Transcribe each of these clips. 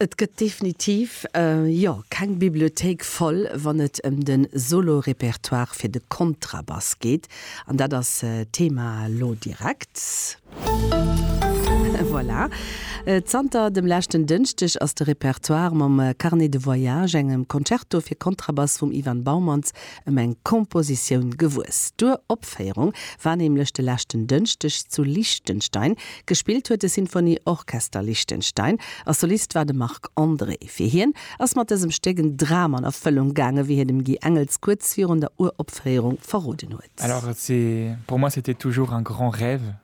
Et gëtt definitiv, jo, keng Bibliothéik voll, wann et ëm de Solo-Repertoire fir de Kontrabass geet. An dat ass d'Thema elo direkt. Voilà. Zanter dem leschten Dënschdeg ass de Repertoire mam Carnet de voyage, engem Concerto fir Kontrabass vum Ivan Baumanns, ëm eng Kompositioun gewuess. D'Uropféierung war nämlech de leschten Dënschdeg zu Liechtenstein. Gespillt huet de Sinfoni Orchester Liechtenstein a Solist war de Marc André. Fir hien ass mat dësem Stéck en Dram an Erfëllung gaangen, wéi hien dem Guy Engels kuerz virun der Uropféierung verroden huet. Alors pour moi c'était toujours un grand rêve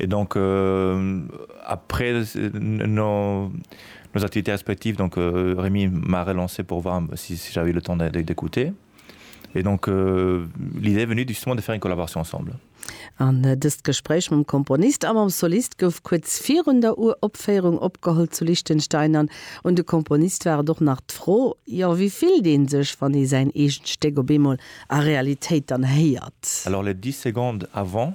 Et donc après nos activités respectives donc Rémi m'a relancé pour voir si j'avais le temps d'écouter et donc l'idée est venue justement de faire une collaboration ensemble. An dëst Gespréich mam Komponist a mam Solist gouf kuerz virun der Uropféierung opgeholl zu Liechtenstein an un de Komponist war et och nach d'Fro, jo wéi fillt ee sech wann ee säin eegent Stéck op eemol a Realitéit dann héiert? Alors les dix secondes avant.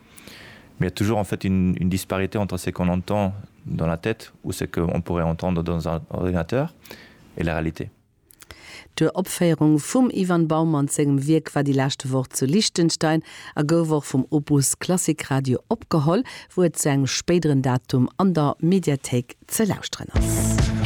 Mais il y a toujours en fait une disparité entre ce qu'on entend dans la tête ou ce qu'on pourrait entendre dans un ordinateur et la réalité. D'Uropféierung vum Ivan Bauman sengem Wierk war déi leschte Woch zu Liechtenstein a gouf och vum Opus Klassik Radio opgeholl, wou et zu engem spéideren Datum an der Mediathéik ze lauschteren ass.